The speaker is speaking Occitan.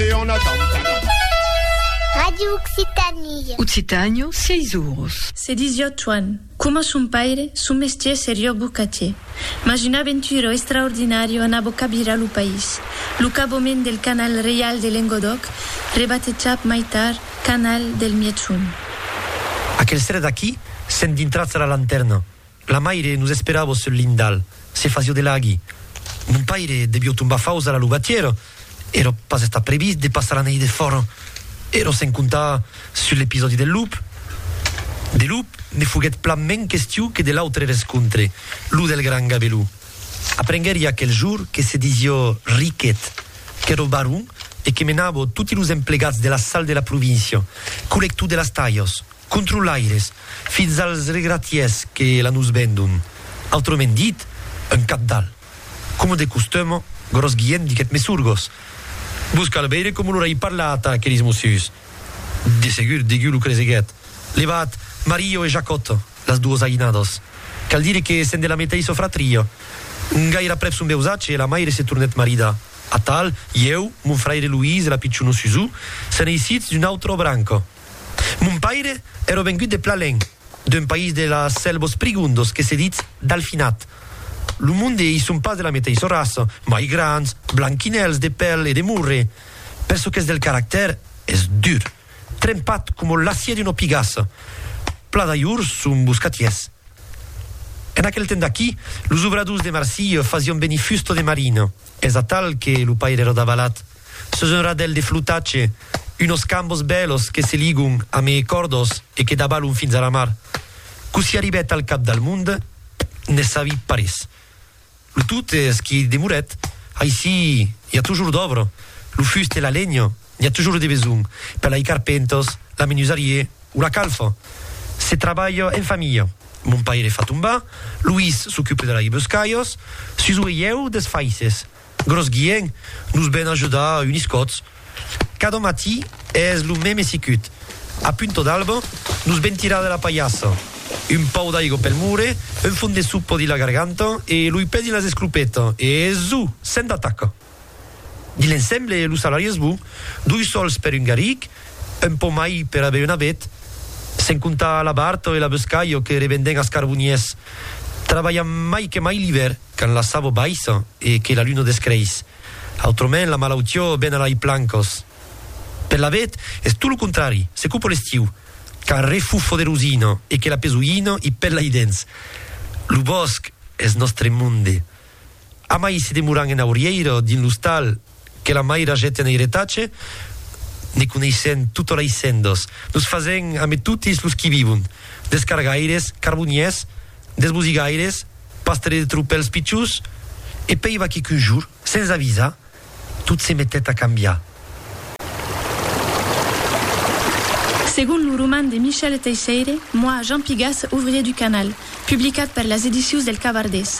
Et on attend. Radio Occitanie. Occitània, sièis oros. Se disiá Choan. Coma son paire, son mestier serió bocatier. Mas un aventuro extraordinario anavo cabirar lo país. Lo cabomèn del canal reial de Lengodòc, rebatejat mai tard canal del Mièg Son. Aquel seret aquí, sent dintratz a la lantèrna, La maire nos esperavo sul lindal, se fasio de laghi. Mon paire debio tombar faus a la luvatiera, ero pas estat previst de passar la neit de fòra. Ero sen comptar sul episòdi del lup. De lup me foguèt plan men question que de l'autre rescontre, lo del gran Gabelou. Aprenguèri aquel jour que se disió Riquet, qu'ero baron e que menavo toti los emplegats de la sal de la província, colector de las talhas. controlaires, fins als regratiers que la nos vendon, autrament dit, un cabdal. Coma de costum, Gròs Guilhèm diguèt Mesurgos, Vos cal veire coma lo rei parla atà aqueles mossuts. De segur, degú lo creseguèt, levat Mario e Jacòt, las duos aïnados. Cal dire que sen de la meteissa fratria. Gair'aprèp son veusatge, la maire se tornèt maridar. Atal, ieu, mon fraire Luís e la pichona Susù, se'n eissitz d'una autra branca. Mon paire ère vengut de Plalèn, d'un país de las Sèlvos Prigondos que se ditz Dalfinat. Lo monde i son pas de la meteissa raça, mai grands, blanquinèls de pèl e de morre, per çò qu'es del caractèr, es dur, trempat coma l'acier d'una pigassa. Pla d'ajors son boscatiers. En aquel temps d'aquí, los obradors de Marsilha fasián venir fusta de marina, es atal que lo paire ère davalat. Sus un radèl de flotatge, unos cambos bèlos que se ligon a me còrdos e que dabalon fins a la mar. Cossí arribèt al cap del mond, ne sabi parés. Lo tot es qu'i demorèt. Aicí i a tojor d'òbra. Lo fust e la lenha n'i a tojor de besonh per lai carpèntas, la menusarier o la calfa. Se trabalha en familha. Mon paire fa tombar, Luís s'ocupe de lai boscalhas, Suso e ieu des faisses. Gros Guien, nos ven ajudar unis còts. Cada matí es lo meme sicut. A punto d'alba, nos ven tirar de la palhassa. Un pau d'aigo pel mure, un fon de sopa dins la garganta e loi pè dins las esclopetas e zu! Sent d'ataca! Dins l'ensemble, lo salari es bon, doi sòls per un garric, un pò mai per aver una bet, sent comptar la barta e la bescalha que revendèn as carboniers. Trabalham mai que mai l'ivèr. Quand la sabo baissa e que la luna descreis. Autrament la malautió ven a lai plancos. Per l'abet es tot lo contrari, se cupo l'estiu, quand refufo de rosina e que la pesoina i pèl lai dens. Lo bòsc es nòstre monde. Amai se demoran en aurièira dins l'ostal que la maira jèt en airetatge, ne coneissèn tota lei sendas, nos fasèn ame totis los qui vivon, des cargaires, carboniers, des bosigaires, pastres de tropèls pichons, e pei va que qu'un jour, sens avisar, tot se metèt a cambiar. Segon lo roman de Michel Teisseire, Moi, Jean Pigas, ouvrier du canal, publicat per las edicius del Cavardés,